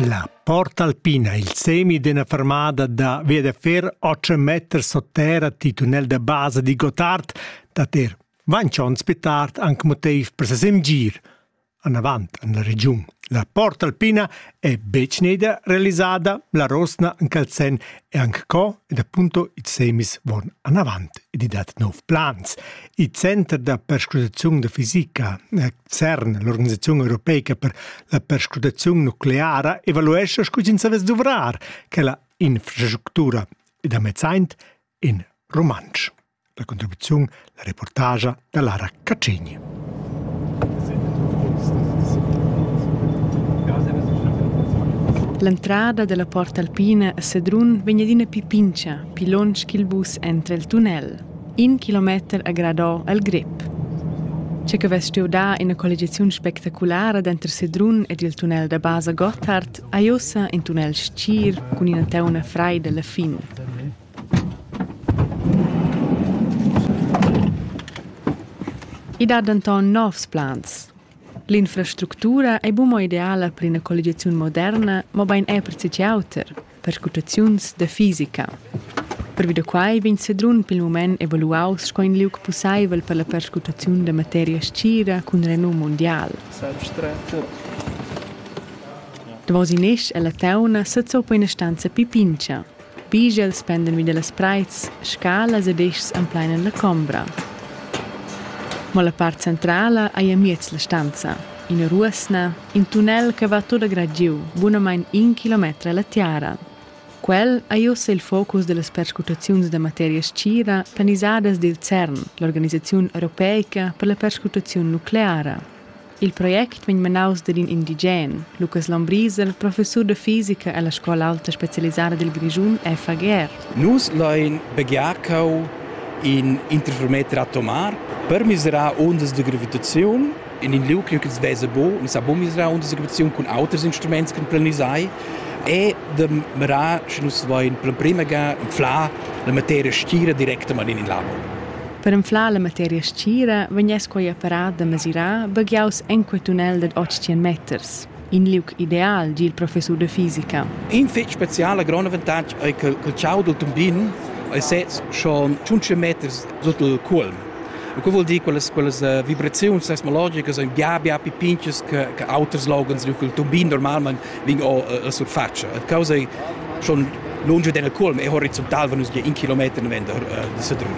La porta alpina e il semi d'ina fermada da Viedefer otg meters sut terra titunel da basa di Gottard dat er vainch ons pli tard anc motiv per ses emgir anavant en la regiun. La porta alpina è betg neda realisada, la rosna en cal sen è anche co ed appunto i semis von anavant ed i dat nov plans. Il center da perscrutaziun da fisica CERN, l'organisaziun europeica per la perscrutaziun nucleara, evaluescha sco ins savess duvrar quella infrastructura ed amezzaint in rumantsch. La contribuziun, la reportagia da Lara Cacini. L'entrada della Porta Alpina a Sedrun vegn adina più pincia, più lonsch ch'il bus entra il tunnel. In kilometer ha gradò el grep. Che che vess stuiu dar ina colligiaziun spectaculara denter Sedrun ed il tunnel da basa Gotthard ha ei ussa in tunnel stgir cun ina teuna freida alla fin. I dat denton novs plans. L'infrastructura ei buca ideala per ina colligiaziun moderna, mobein è per tgi auter. Perscrutaziuns da fisica. Pervi da quai vegn Sedrun pil mument evaluaus sco in liug pusseivel per la perscrutaziun da materia scira cun renum mundial. Davos in esch ella teuna sezoppa ina stanza pipincha. Bigels pendan vi dallas preits, scalas ed eschs empleinan la combra. Mo la part centrala ei amiez la stanza, ina ruosna, In tunnel che va tot agragiu, bunamain in kilometer alla tiara. Quel ha ussa il focus dellas perscrutaziuns da materia stgira planisadas dil CERN, l'organisaziun europeica per la perscrutaziun nucleara. Il project vegn manaus dad in indigen, Lukas Lombriser, professur da fisica alla scola alta specialisada dil Grischun FAGR. Nus lein begiarcau in interferometer atomar per miserar ondas da gravitaziun in in liug ch'els vesa bu, nus ha bu misra untersegregaziun cun auters instruments ch'en planisai e da mirar, sche nus vain per l'emprima ga inflar la materia stgira directamain in labo. Per inflar la materia stgira vegness quei apparat da mesirar baghiaus enquei tunnel dad 80 meters. in liug ideal, di il professur de fisica. In fetg speciala grond avantatg ei che il ciau dil tumbin ei sez schon 15 meter sut il culm. E quei vuol dir quellas quellas uh, vibraziuns seismologicas ein bia bia più pinches che che auters logans liug il tumbin normalmein vegn o uh, sur faccia. E causa ei schon lungi den il culm e horizontal van nus gia in kilometer noventa uh, de Sedrun.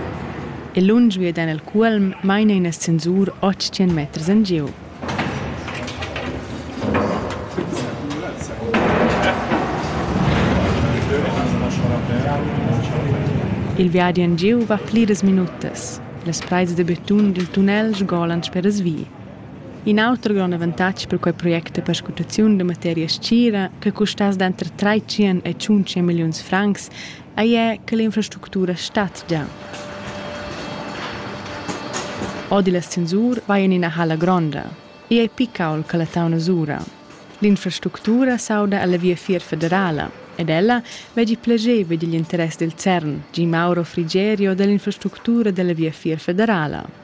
E lungi den il culm maina in ascensur 800 meters engiu. Il viadi en giu va pliras minutas. Las praits da betun dil tunnel sgolan speras vi. In auter grond avantatg per quei project è perscrutaziun da materia scira che custass denter 300 e 500 milliuns francs ei è che l'infrastructura statgia. Odi la censur vai in ina hala gronda. Ei ei picaul che la tauna sura. L'infrastructura sauda alla viafier federala ed ella veggi plageva digl interess del CERN, Gi Mauro Frigerio dell'infrastructura della viafier federala.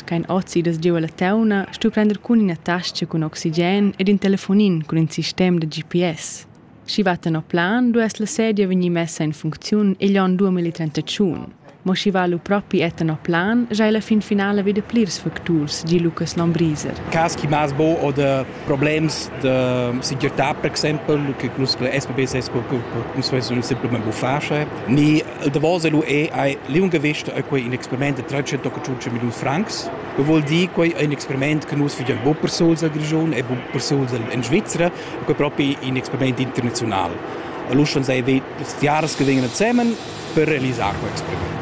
Ch'ein ozidas giu ella teuna, stu prender cun ina tascha cun oxigen ed in telefonin cun in sistem da GPS. Sch'i va tenor plan, duess la sedia vegnir messa en funcziun igl onn 2031. Mo sch'i va lu propi è tenor plan, giai la fin finala vi da plirs facturs, gi Lucas Lombriser. Cas chi mâs bo oder problems da segirtà per exempel che nus per SPB sco nus vessan simplamain buffà sche ni il davos lu è ei liungavisch ei quei in experiment da 385 milliun francs che vuol dir quei ein experiment che nus vegian bu per suls al Grischun e bu per suls in Svizra quei propi in experiment internazional lu schon sei jahres che vegnan zusammen per realisar quei experiment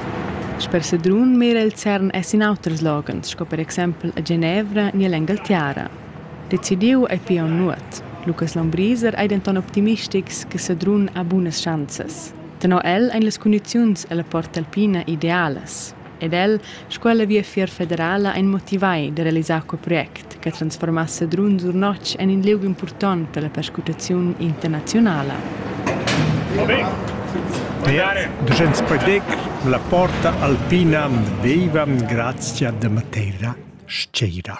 Sper Sedrun mira il CERN es in auters loghens, sco per exempel a Genevra ni all'Engaltiara. Decidiu ei pia aunc nuot. Lukas Lambriser ei denton optimistics che Sedrun ha bunas schanzas. Tenor el ein las cundiziuns ella Portalpina idealas. Ed el, sco ella Viafier federala, ein motivai da realisar quei project che transformass Sedrun sur notg en in liug impurtont per la perscrutaziun internazionala. Ducents Podec, la porta alpina viva grazia da Matera Sceira.